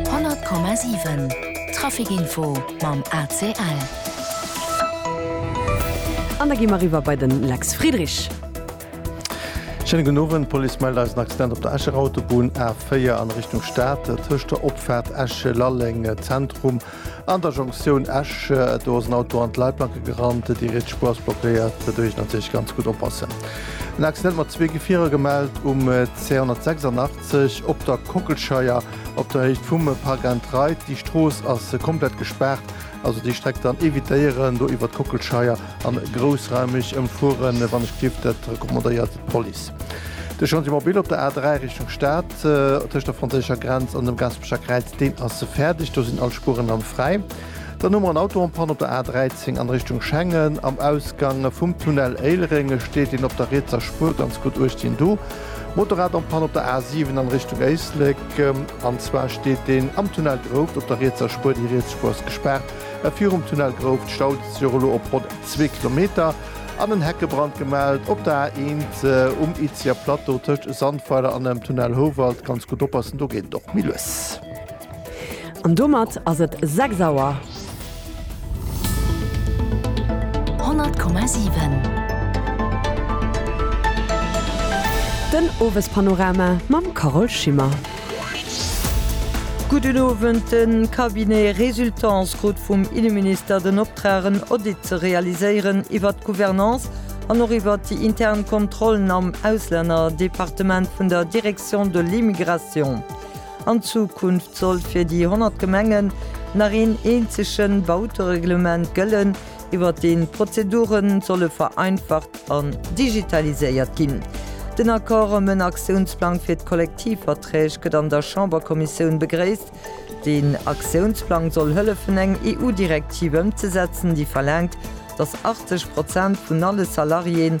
100,7 Trafic Info mam ACL. An da gi mer eriwwer bei den Lex Friedrich. Schéine gudden Owend. D'Police mellt eis en Accident op der Escher Autobunn A4 an Richtung Stad, tëscht der Opfaart Esch-Lalleng Zentrum an der Jonktioun Esch. Do ass en Auto an d'Leitplanke gerannt, déi riets Spuer ass blockéiert. Doduerch natierlech ganz gutt oppassen. En Accident mat zwee Gefierer gemellt um C186. sech op der Kockelscheier op der Héicht vum Parc Entraide. Déi Strooss ass komplett gespaart, also déi Streck dann evitéieren, do iwwer d'Kockelscheier a groussraumeg ëmfueren, wann ech dierf, dat recommandéiert d'Police. De Chantier mobile op der A3 Richtung Stad, tëscht der franséischer Grenz an dem Gaspecher Kräiz, deen ass fäerdeg, do sinn all Spueren dann fräi. Dann hu mer en Auto en panne op der A13 an Richtung Schengen, am Ausgang vum Tunnel Éilereng steet een op der rietser Spuer ganz gutt uecht hien do. Motorrad am Panne op der A7 an Richtung Éislek. An zwar steet deen am Tunnel Grouft op der rietser Spuer. Déi riets Spuer ass gespaart virum Tunnel Grouft. Stau dëst Joer elo op ronn zwee Kilometer. An en Heckebrand gemellt op der A1 um Itzeher Plateau tëscht Sandweiler an dem Tunnel Houwald. Ganz gutt oppassen, do geet et och méi lues. An domat ass et 6 Auer. 100,7. Den Owespanorama mam Carole Schimmer. Gudden Owend. De Cabinet Résultance krut vum Inneminister den Optrag en Audit ze realiséieren iwwert d'Gouvernance an och iwwert déi intern Kontrollen am Auslännerdepartement vun der Direction de l'Immigration. An Zukunft soll fir déi 100 Gemengen nach een eenzege Bautereglement gëllen, iwwert deen d'Prozedure solle vereinfacht an digitaliséiert ginn. Den Accord ëm en Aktiounsplang fir d'Kollektivverträg gëtt an der Chamberkommissioun begréisst. Deen Aktiounsplang soll hëllefen eng EU-Direktiv ëmzesetzen, déi verlaangt, datt 80 Prozent vun alle Salariéen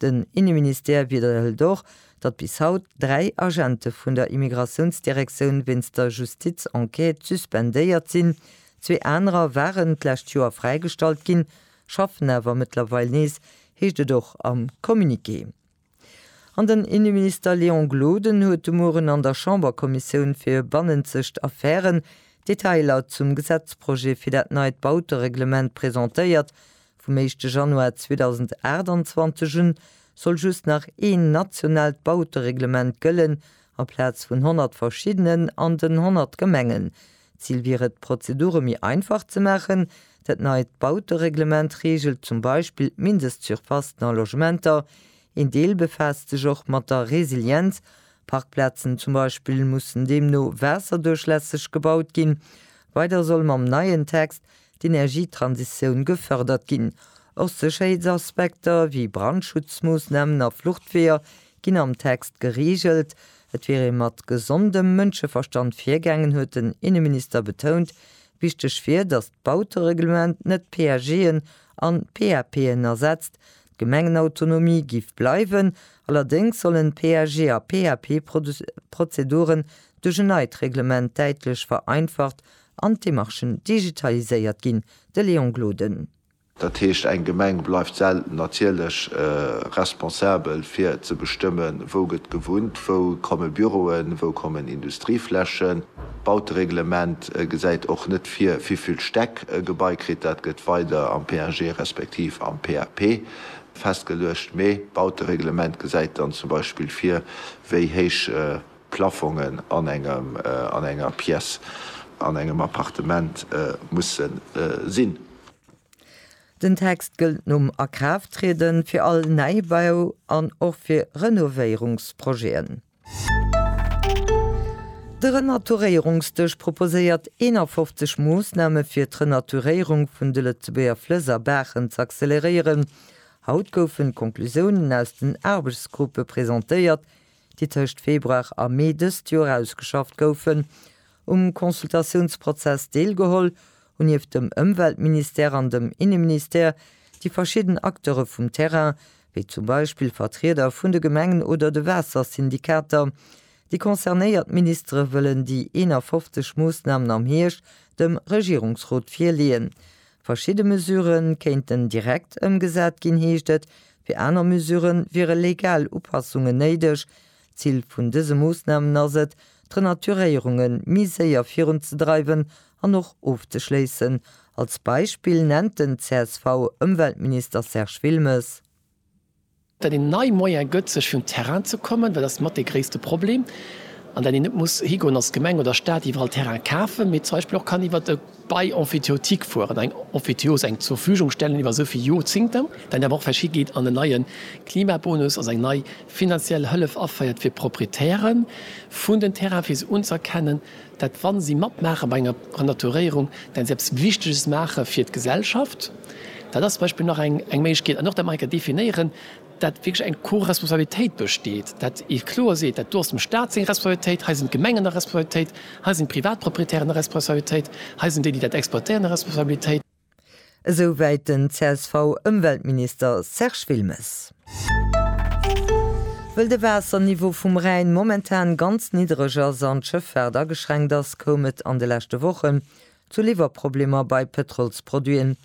Den Inneministère widderhëlt och, datt bis haut dräi Agente vun der Immigratiounsdirektioun wéinst der Justizenquête suspendéiert sinn. Zwee anerer waren d'lescht Joer fräigestallt ginn, schaffen awer mëttlerweil nees, heescht et och am Communiqué. An den Inneminister Léon Gloden huet de Mueren an der Chamberkommissioun fir bannenzegt Affären d'Detailer zum Gesetzprojet fir dat neit Bautereglement presentéiert, Vum éischte Januar 2028 un soll just nach een nationaalt Bautereglement gëllen, aplaz vun 100 verschiddenen an den 100 Gemengen. D'Zil wier et, d'Prozedure méi einfach ze maachen. Dat neit Bautereglement reegelt zum Beispill d'Mindestsurfacen a Logementer. Een Deel befaasst sech och mat der Resilienz. Parkplazen zum Beispill mussen deemno waasserduerchlässeg gebaut ginn. Weider soll mam neien Text d'Energietransitioun gefërdert ginn. Och Sécherheetsaspekter wéi Brandschutzmoossnamen a Fluchtweeër ginn am Text gereegelt. Et wier ee mat gesondem Mënscheverstand virgaangen, huet den Inneminister betount. Wichteg wier, datt d'Bautereglement net PAGen an PAPen ersetzt. D'Gemengenautonomie géif bleiwen, allerdéngs sollen PAG a PAP-Prozeduren duerch en neit Reglement däitlech vereinfacht an d'Demarchen digitaliséiert ginn, de Léon Gloden. Dat heescht, eng Gemeng bleift selten natierlech responsabel fir ze bestëmmen, wou gëtt gewunnt, wou komme Büroen, wou kommen Industrieflächen. D'Bautereglement gesäit och net vir, wivill Stäck e Gebai kritt. Dat gëtt weider am PAG respektiv am PAP festgeluecht. Mee d'Bautereglement gesäit dann zum Beispill vir, wéi héich Plafongen an engem, an enger Pièce, an engem Appartement musse sinn. Den Text gëllt nom Akraafttrieden fir all Neibau an och fir Renovéierungsprojeten. De Renaturéierungsdësch proposéiert 51 Moossname fir d'Renaturéierung vun de Lëtzebuerger Flëss a Baachen z'acceleréieren. Haut goufen d'Conclusiounen aus den Aarbechtsgruppe presentéiert, déi tëscht Februar a Mee dëst Joer ausgeschafft goufen, um Consultatiounsprozess deelgeholl, hunn nieft dem Ëmweltministère an dem Inneministère déi verschidden Acteure vum Terrain, wéi zum Beispill Vertrieder vun de Gemengen oder de Waassersyndikater, déi concernéiert Ministere wëllen déi 51 Moossnamen am Hierscht dem Regierungsrot virleeën. Verschidde Mesure kéinten direkt ëmgesat ginn, heescht et Fir aner Mesurë wiere legal Upassungen néideg. D'Zil vun dëse Moossnamen ass et, d'Renaturéierunge méi séier virunzedreiwen an och ofzeschléissen. Als Beispill nennt den CSV-Ëmweltminister Serge Wilmes. Datt een nei Moyen gëtt, sech un Terrain ze kommen, dat ass mat dee gréisste Problem. An datt een net muss higoen als Gemeng oder Stat iwwerall Terrain kafen, mee zum Beispill och kann iwwer e. bei Emphytéotique fueren, eng Emphytéose, eng Zurvügungstellen iwwer esou vill Jorzingten, dann awer och verschi geet an en neie Klimabonus, also eng nei finanziell Hëllef aféiert fir d'Proprietäre vun den Terrainen, fir se unzerkennen, dat wa si matmaache bei enger Renaturéierung, dat si eppes Wichteges maache fir d'Gesellschaft. Dat ass zum Beispill nach eng Méiglechkeet. An och dat mer enker definéieren. dat wierklech eng Co-Responsabilitéit besteet, dat ee kloer seet, dat do ass dem Stat seng Responsabilitéit, hei sinn d'Gemengen a Responsabilitéit, hei sinn d'Privatproprietären a Responsabilitéit, hei sinn déi, déi dat exploitéieren, a Responsabilitéit. Esou wäit den CSV-Ëmweltminister Serge Wilmes. Wëll de Waasserniveau vum Rhäin momentan ganz niddereg ass an d'Schëffaart ageschränkt ass, koum et an de leschte Wochen zu Liwwerproblemer bei Pëtrolsproduiten.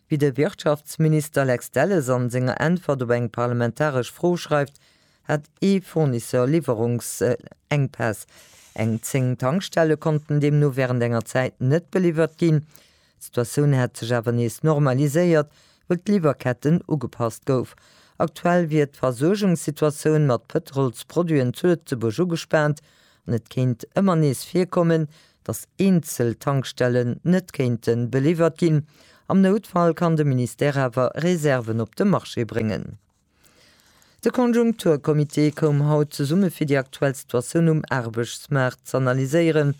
Wéi de Wirtschaftsminister Lex Delles an senger Äntwert op eng parlamentaresch Fro schreift, hat ee Fournisseur Liwwerungsenkpäss. Eng 10 Tankstelle konnten deemno wärend enger Zäit net beliwwert ginn. D'Situatioun hätt sech awer nees normaliséiert, wëll d'Liwwerketten ugepasst gouf. Aktuell wier d'Versuergungssituatioun mat Pëtrolsproduiten zu Lëtzebuerg ugespaant, an et kéint ëmmer nees virkommen, datt eenzel Tankstellen net kéinte beliwwert ginn. Am Noutfall kann de Ministère awer Reserven op de Marché bréngen. De Konjunkturcomité koum haut zesumme fir déi aktuell Situatioun um Aarbechtsmaart z'analyséieren.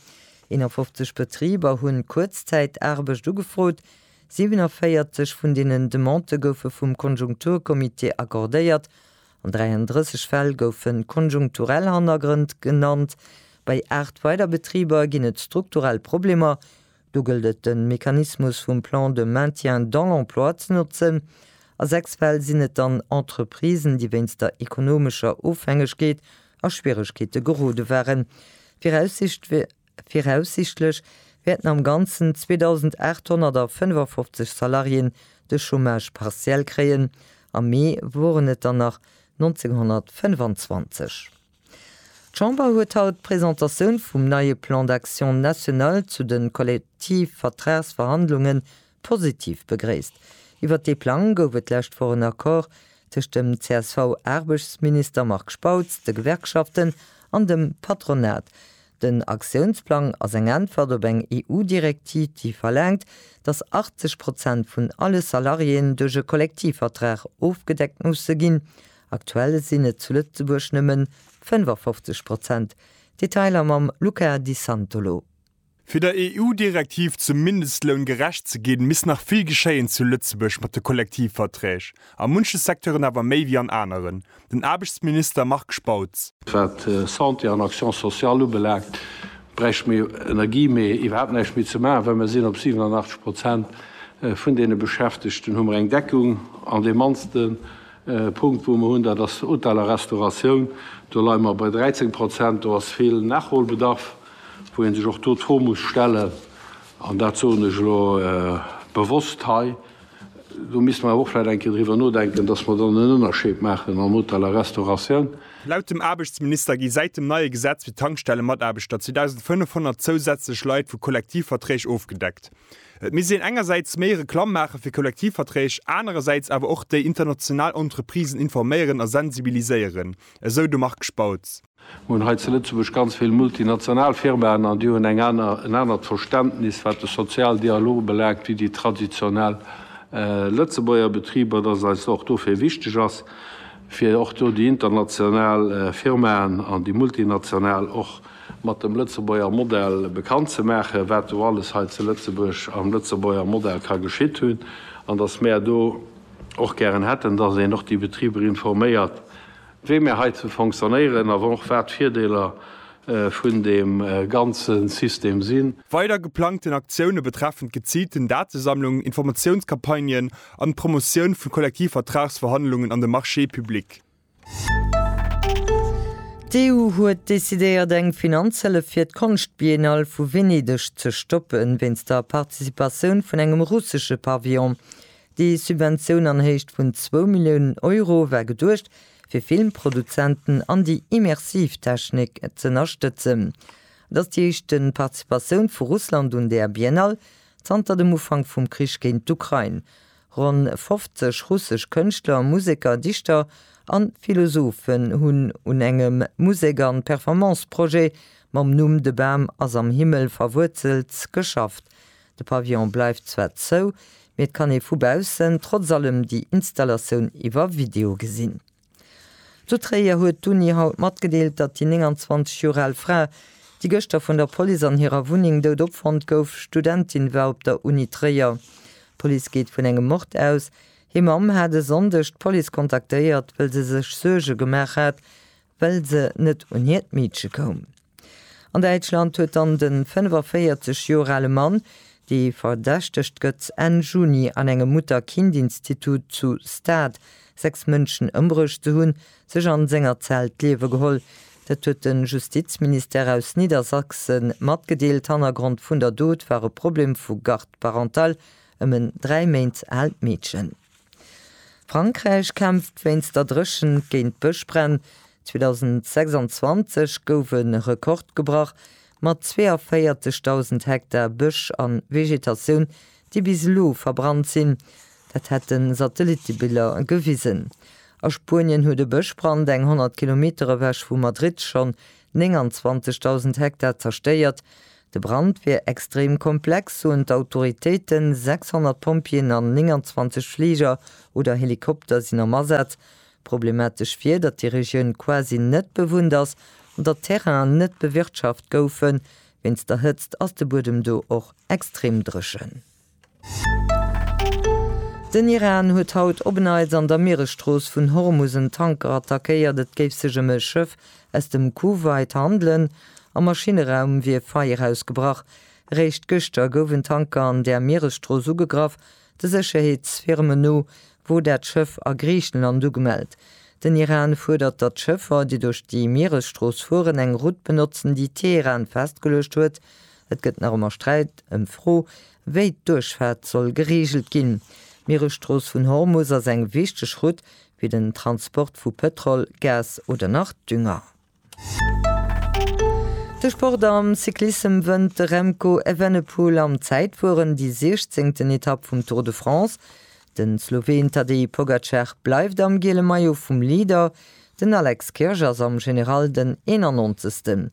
51 Betriber hu Kuerzzäitaarbecht ugefrot. 47 vun deenen Demandë goufe vum Konjunkturcomité accordéiert An 33 Fäll goufe konjunkturell Hannergrënn genannt. Bei 8 weider Betriber ginn et strukturell Problemer. Do gëllt et de Mechanismus vum Plan de maintien dans l'emploi ze notzen. A 6 Fäll sinn et dann Entreprisen, déi wéinst der ekonomescher Ofhängegkeet a Schwieregkeete gerode waren. D'Viraussicht wier, Viraussichtlech wäerten am Ganzen 2.855 Salariéen de Chômage partiel kréien, am Mee woren et der nach 1.925. D'Chamber huet haut d'Presentatioun vum neie Plan d'action national zu de Kollektivvertragsverhandlunge Positiv begréisst. Iwwert dee Plang gouf et d'lescht Woch en Accord tëscht dem CSV-Aarbechtsminister Marc Spautz, de Gewerkschaften an dem Patronat. Den Aktiounsplang ass eng Äntwert op eng EU-Direktiv, déi verlaangt, datt 80 Prozent vun alle Salariéen duerch e Kollektivvertrag ofgedeckt musse ginn. Aktuell sinn et zu Lëtzebuerg nëmmen 55 Prozent. Detailer mam Luca Di Santolo. Fir der EU-Direktiv zum Mindestloun gerecht ze ginn, misst nach vill geschéien zu Lëtzebuerg mat de Kollektivverträg, a munche Secteuren awer méi wéi an aneren. Den Aarbechtsminister Marc Spautz. Wat Santé an Action sociale ubelaangt, bräichte mir Energie méi iwwerhaapt näischt méi ze maachen, well mir sinn op 87 Prozent vun deene Beschäftegten hu mer eng Deckung. An dee mannste Punkt, wou mer hunn, dat ass Hotel a Restauratioun, do leie mer bei 13 Prozent. Do ass vill Nachholbedarf. wou ee sech och do d'Fro muss stellen, an dat soen ech elo bewosst hei, do misste mer awer och vläicht eng Kéier driwwer nodenken, dass mer dann en Ënnerscheed maachen am Hotel a Restauratioun. Laut dem Aarbechtsminister gi säit dem neie Gesetz fir d'Tankstellemataarbechter 2.500 zousätzlech Leit vu Kollektivverträg ofgedeckt. Et misst een engersäits méi Reklamm maache fir Kollektivverträg, anerersäits awer och déi international Entreprisen informéieren a sensibiliséieren, esou de Marc Spautz. Mir hunn hei zu Lëtzebuerg ganz vill multinational Firmaen, an déi hunn eng aner, en anert Verständnis, wat de Sozialdialog ubelaangt, wéi déi traditionell Lëtzebuerger Betriber, dass et eis och dofir wichteg ass, fir och do déi international Firmaen an déi multinational och mat dem Lëtzebuerger Modell bekannt ze maachen, wat do alles hei zu Lëtzebuerg am Lëtzebuerger Modell ka geschitt hunn, an dass mär do och gären hätten, dass een och déi Betriber informéiert, wéi mir heizou fonctionnéieren a och wat d'Virdeeler vun deem ganze System sinn. Weider geplangten Aktioune betreffen d'geziilten Datesammlung, Informatiounscampagnen an d'Promotioun vu Kollektivvertragsverhandlungen an de Marchés publics. D'EU huet decidéiert, eng Finanzhëllef fir d'Konschtbiennale vu Venedeg ze stoppen, wéinst der Participatioun vun engem russesche Pavillon. Déi Subventioun an Héicht vun zwou Milliounen Euro war geduecht, fir Filmproduzenten an déi immersiv Technik z'ënnerstëtzen. Et ass déi éischte Participatioun vu Russland un där Biennale zanter dem Ufank vum Krich géint d'Ukrain. Ronn 50 russesch Kënschtler, Museker, Dichter a Philosophen hunn un engem Musek an Performance-Projet mam Numm De Bam ass am Himmel verwuerzelt geschafft. De Pavillon bleift zwar zou, mee et kann ee vu baussen trotz allem déi Installatioun iwwer Video gesinn. Zu Tréier huet d'Uni haut matgedeelt, datt déi 29 Joer al Fra, déi gëschter vun der Police an hirer Wunneng dout opfonnt gouf, Studentin war op der Uni Tréier. D'Police geet vun engem Mord aus. Hir Mamm hat e Sonndeg d'Police kontaktéiert, wëll se sech Suerge gemaach hat, well se net un hiert Meedche koum. An Däitschland huet dann de 45 Joer ale Mann, dee verdächtegt gëtt, Enn Juni an engem Mutter-Kind-Institut zu Stade sechs Mënschen ëmbruecht ze hunn, sech a senger Zell d'Liewe geholl. Dat huet de Justizministère aus Niedersachse matgedeelt. Hannergrond vun der Dot war e Problem vu Garde parentale ëm en dräi Méint aalt Meedchen. Frankräich kämpft wéinst der Dréchent géint Bëschbränn. 2026 gouf e Rekord gebrach, mat 42.000 Hektar Bësch a Vegetatioun, déi bis elo verbrannt sinn. Dat hätten Satellittebiller gewisen. A Spuenien huet e Bëschbrand eng 100 Kilometer ewech vu Madrid schonn 29.000 Hektar zerstéiert. De Brand wier extrem komplex, soen d'Autoritéiten. 600 Pompjeeën an 29 Fliger oder Helikopter sinn am Asaz, Problematesch wier, datt déi Regioun quasi net bewunnt ass an datt d'Terrainen net bewirtschaft goufen. Wéinst der Hëtzt ass de Buedem do och extrem dréchen. Den Iran huet haut op en Neits an der Mieresstrooss vun Hormus en Tanker attackéiert. Et géif sech ëm e Schëff aus dem Kuwait handelen. Am Maschinneraum wier Feier ausgebrach. Eréischt gëschter gouf en Tanker an där Mieresstrooss ugegraff. De Sécherheetsfirmen no wor dat Schëff a Griichenland ugemellt. Den Iran fuerdert, datt Schëffer, déi duerch déi Mieresstrooss fueren, eng Route benotzen, déi Teheran festgeluecht huet. Et gëtt nach ëmmer Sträit ëm d'Fro, wéi d'Duerchfaart soll gereegelt ginn. D'Mieresstrooss vun Hormus ass eng wichteg Route fir den Transport vu Pëtrol, Gas oder nach Dünger. De Sport am Cyclissem wënnt de Remco Evenepoel am Zäitfueren déi siechzéngten Etapp vum Tour de France. De Sloween Tadej Pogacar bleift am giele Maillot vum Leader, den Alex Kirch ass am General den eenennonzegsten.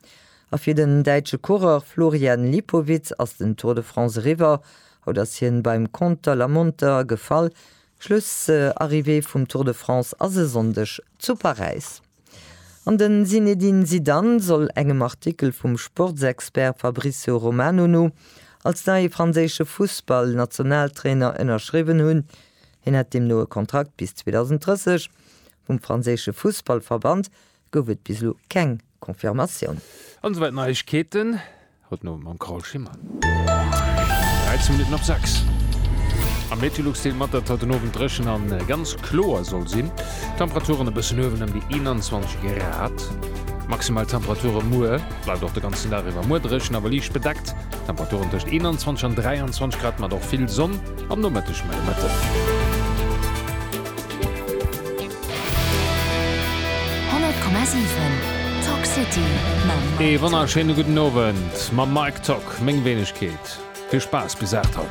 A fir den däitsche Coureur Florian Lipowitz ass den Tour de France eriwwer. Haut ass hien beim Conter la Monter gefall. Schlussarrivée vum Tour de France ass e Sonndeg zu Paräis. An de Zinedine Zidane soll engem Artikel vum Sportsexpert Fabrizio Romano no als neie franséische Fussballnationaltrainer ënnerschriwwen hunn. Hien hätt deemno e Kontrakt bis 2030. Vum franséische Fussballverband gouf et bis elo keng Confirmatioun. An esouwäit Neiegkeeten. Haut no mam Carole Schimmer. 13 Minutten op 6. Am Meteolux deelt mat, datt haut den Owend dréchen a ganz kloer soll sinn. D'Temperaturen e bëssen uewen ëm déi 21 Grad. Maximal Temperature muer, bleift och de ganzen Dag iwwer muer dréchen, awer liicht bedeckt. Temperaturen tëscht 21 an 23 Grad mat och vill Sonn am Nomëtteg, mä e Mëtten. 100,7 Talk City mam Mike Tock. Ee wonnerschéine gudden Owend mam Mike Tock, meng Weenegkeet. Vill Spaass bis 8 haut.